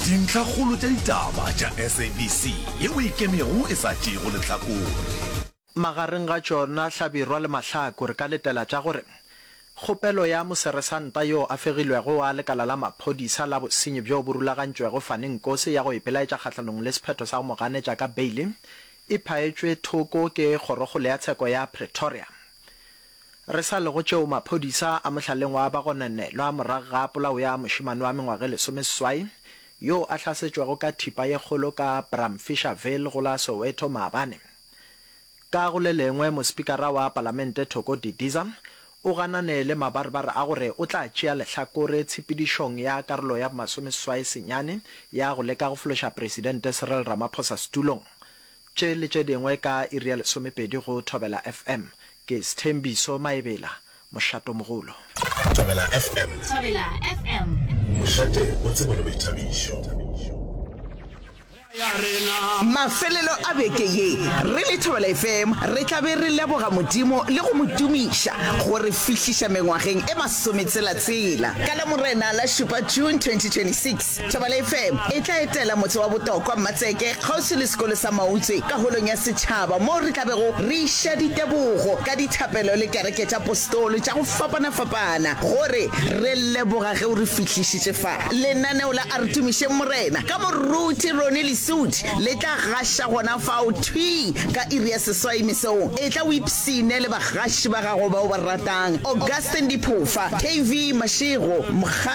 Dintlhakgolo tša ditaba tša SABC yeo e ikemego e sa tšeego lehlakore. Magareng ga tšona hlabirwa le mahlaku re ka letela tša gore kgopelo ya moseresanta yo a fegilwego wa lekala la maphodisa la bosenyi bjo bo rulagantšwego Fani Nkosi ya go ipelaetša kgahlanong le sephetho sa go mo ganetša ka beile e phaetšwe thoko ke kgorokgolo ya tsheko ya Pretoria Re sa lego tšeo maphodisa a mohlaleng wa bagonanelwa morago ga polao ya mošemane wa mengwaga e lesomeseswai yo a hlasetšwego ka thipa ye kgolo ka Bramfisherville go la Soweto maabane. Ka go le lengwe, mospikara wa palamente Thoko Didiza o ganane le mabarebare a gore o tla tšea lehlakore tshepedišong ya karolo ya bomasomeseswai senyane ya go leka go fološa presidente Cyril Ramaphosa setulong Tše le tše dingwe ka iri ya lesomepedi go Thobela FM. Ke Sthembiso Maebela, Mošatomogolo. Thobela FM. Thobela FM. Mošate o tsebo le boithabišo. Mafelelo a beke ye re le Thobela FM re tla be re leboga Modimo le go mo tumiša go re fihliša mengwageng e masometselatsela. Ka la Morena la šupa June 2026, Tšabalai Fair e tla etela motse wa Botokwa, Mmatseke, kgauswi le sekolo sa Mautswe ka Holong ya Setšhaba moo re tla bego re iša ditebogo ka dithapelo le kereke tša Postolo tša go fapana-fapana gore re leboga ge o re fihlišitše fa. Lenaneo la A Re Tumišeng Morena ka Moruti Ronnie Lesuthi le tla gaša gona fao thwii ka iri ya seswai mesong. Etla o ipshine le bagaši ba gago ba o ba ratang, Augustine Diphofa, KV Mashego, Mkga.